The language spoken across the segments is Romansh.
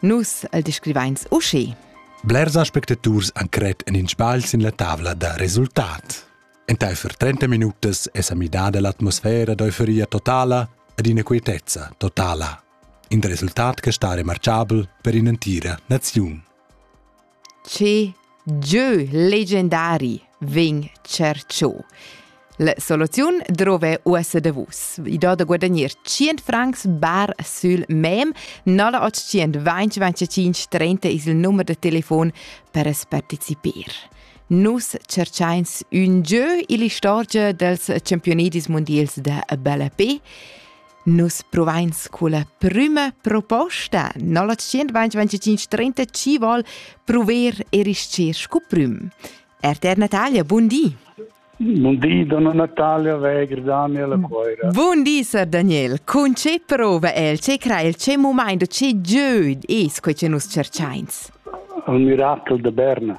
Nus el descrivains uschi. Blers aspectaturs han cret en in sbagl sin la tavla da resultat. Entaifer 30 minutas è sa midada l'atmosfera d'euforia totala ed inaquietezza totala. In resultat che sta remarchabel per in'entira naziun. che gieu legendari vegn cerchò. La soluziun drove uossa da vus. I do da guadagnir 100 francs bar sul mem 0800 2025 30 is il numero de telefon per es partecipar. Nus cerchains un gieu ill'istorgia dels campionedis mondials da ballapé Nus provains culla prüma proposta no la 125 chi vol prover e rischer scu prüm. RTR Natalia, bun di! Bun di, donna Natalia Weger, Daniela Coira. Bun di, Sir Daniel. Con ce prova el, ce crea il, ce momento, ce gieu es quei che nus cercains? Il miracol de Berna.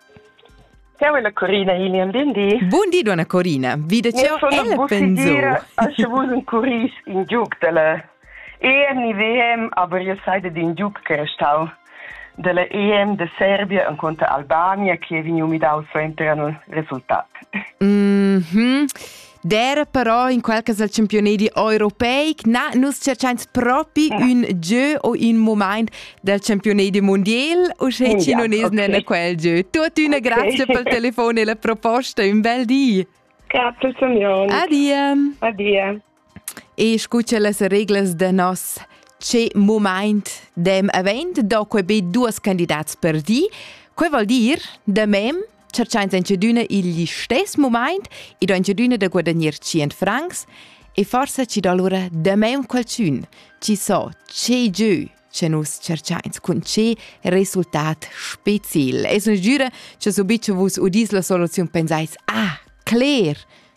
Ciao alla Corina Hilian, buon di. Buon di donna Corina, vide ciao ella pensò. Asche vus un curis in giuc della EMIVM, aber ihr seid in giuc che restau della EM de Serbia en conta Albania, che vegnu midau suenter al resultat. Mhm. Mm Dera però in quel cas del championedi europeic na nus cerchains propi un gieu o un moment del championedi mondial o sche ti non es okay. nenne quel gieu. Tuttuna okay. grazie pel telefon e la proposta, un bel di. Capice mio. Adia. Adia. E scucha las reglas de nos ce moment dem event, do que be duas candidats per di. Que vuol dir, de mem, cerchains incedüna igl istess mumaint e do incedüna da guadagnir 100 francs e forsa ci do allura damaun qualchün chi so che giö che nus cerchains cun che resultat speciel. Es ün giüra che subit che vus udis la soluziun pensais, ah, cler,